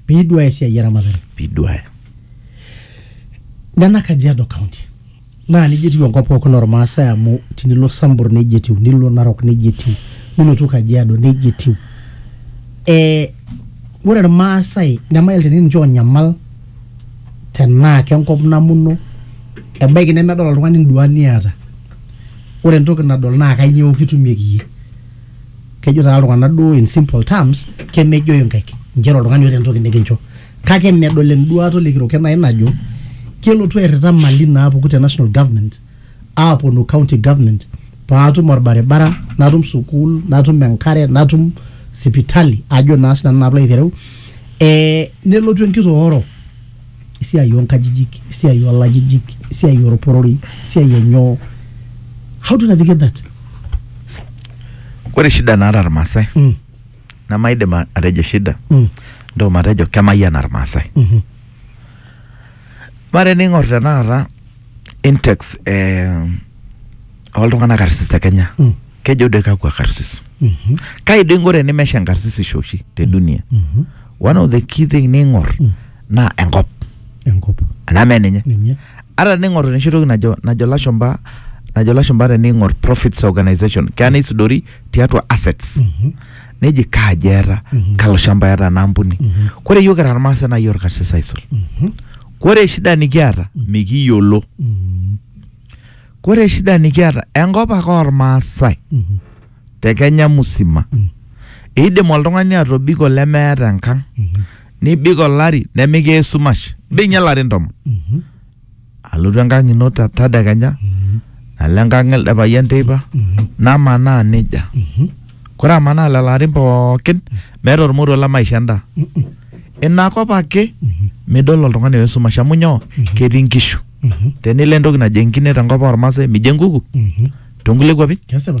piiduaya esiai eramatare piduaya nena kajiado county naa nejia etiu enkop pookin ormaasai amu tinilo sambur nejia etiu nilo narok nejia etiu nilotu kajiado nejia etiu eh, ore irmaasai nemail teni ninche onyamal tenaa kenkop namuno ebaiki nemedol oltung'ani induat niata ore entoki nadol naa kainyioo kitumieki iyie kejo taa iltung'anak duo in simple terms kemejoy inkaik inchere oltung'ani oota entoki nikincho kake medol enduaata olekiroket nai najo kelotu airrita mali naapuku te national government aaponu county government paatum orbaribara natum sukuul natum enkare natum sipitali ajo naa sinanu naa piilo aitereu eh, nelotu enkitooro esiai onkajijik esiai olajijik esiai orporori esiai enyoo how to navigate that Ore shida naata irmaasai mm. nemaidim a- atejo shida Mm. ndio matejo kemayiana irmaasai Mhm. Mare ning'or tenakata index eh, oltung'anak karsis te Kenya Mm. kejo doi kakwa karsis Mhm. kai doi ng'ore nimesha enkarsisisho oshi te dunia Mhm. one of the key thing ning'or naa enkop enkop anaa mee ninye ninye ata tening'or enoshi toki najo najo lashumba najo lashumba tening'or profits organization keya neisudori tiatua assets Mhm. neji kaaji eeta Mhm. kalo shamba eeta ena ampuni Mhm. kore yiok kira irmaasai naa yiok irkarsis aisul Mhm. kore shida nikiata mikiyiolo Mhm. kore shida nikiata enkop ake ormaasai Mhm. te kenya musima Mm. eidim oltung'ani atobiko lemeeta enkang Mhm. nibik olari nemikiya esumash bing'ie ilarin tomon alotu enkang ino ta- tadekenya nalo enkang elde payian teipa namanaa nejia kore amanaa lelo arin pookin meeta ormoruo le maisho endaa inakop ake midol oltung'ani oesumash amu nyoo ketii inkishu tenilo entoki najo enkine tenkop ormaasai mijo enkuku tonkulie kuapi Kesipa.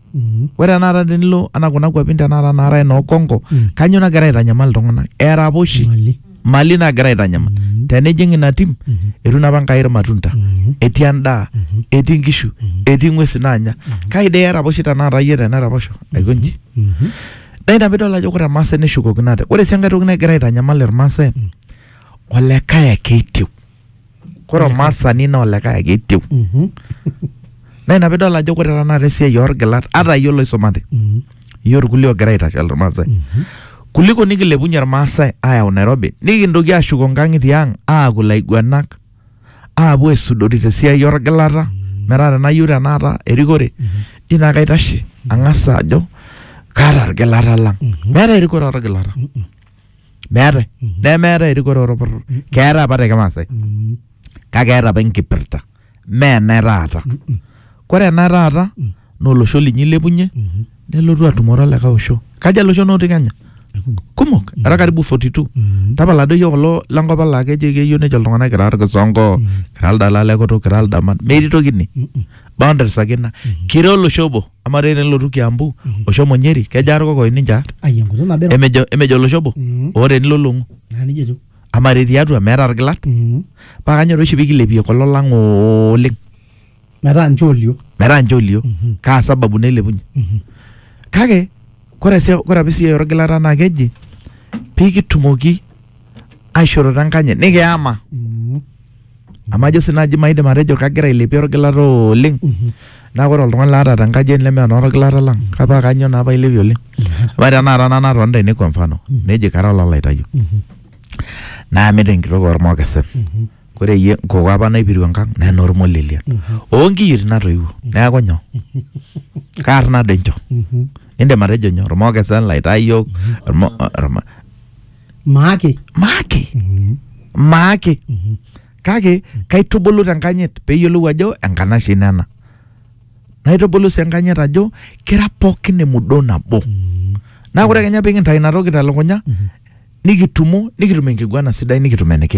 Mhm. ore tenakata tenilo anaa kuna kuapin tenakata naarae noo Congo Mm. kanyoo nagira aitanyamal iltung'anak eraposhi Mali. mali nagira aitanyamal Mhm. tenijing ina tim Mhm. etu napa Enkai irmatunda Mhm. etii endaa Mhm. etii inkishu Mhm. etii ing'uesi naanya kai dee eraposhi tenakata iyie teneraposho aiko nji Mhm. naa ina piidol ajo ore irmaasai neshukokino ate ore sii enkae toki nagira aitanyamal irmaasai olekae ake etiu Kore olmaasani naa olikae ake etiu. Mhm. Naa ina pidol ajo kore tenakata esiai orgilat ata iyie oloisumate, Mhm. iyie orkulie ogira aitashal Irmaasai. Kuliko nikilepunye Irmaasai ayau Nairobi, nikintoki aashuko inkang'itie ang' aaku ilaiguanak, aapuo aisudori tesiai orgilata, metaa tenayieu tenakata erikore, ji naa kaitashe ang'as ajo kaata irgilata lang'. Meetae erikore orgilata. meetae nemeetae erikore orporor keetae apa te kimaasai kake eeta apa enkipirta mee ena taata kore ena taata naa olosho linyi ilepunye nelotu atumore olikae osho kaja iloshon otii kenya kumok era karibu 42 tapala doi iyiok kulo lenkop ang laa kejo keyieu nejo iltung'anak kira irkisongo kira ildalalekutuk kira ildaman metii toki ine boundaries ake ina kira olosho obo amaa taa tenilotu kiambu oshomo nyeri kejaa irkokoyo ninche aar ai enkutuk nabo iro emejo emejo olosho obo Mhm. oo tenilo long'u naa nejia etiu amaa taa tiatua meeta irgilat Mhm. paa kanyor oshi pikilepie kulo lang oleng metaa nche olio metaa nche olio kaa sababu nailepunye kake kore si kore apa esiai orgilata naa keji pikitumoki aishoroto enkanyit nikiyama Mhm. amu ajo sii naaji maidim atejo kagira ailepie orgilata oleng naa ore oltung'ani laata tenkaji ai leme enorgilata lang kapaa kanyoo naa pailepie oleng amaa tenakata nanu atonita ene kwa mfano neji kara olalaitayu naamita enkitok ormokesen kore eyie nkoko apa naipiru enkang naa enormolelia onkiyioitin natoiwuo neeku nyoo kaarna doi inchoo indim atejo nyoo irmokesen ilaitayok irmo- irma- maake maake maake kake kaitubulu tenkanyit peyiolou ajo enkanashe ino ena naitubulu sii enkanyit ajo kira pookin emudoo nabo naa ore kenya pikintai inatoki telukunya nikitumo nikitum enkiguana sidai nikitum enikiim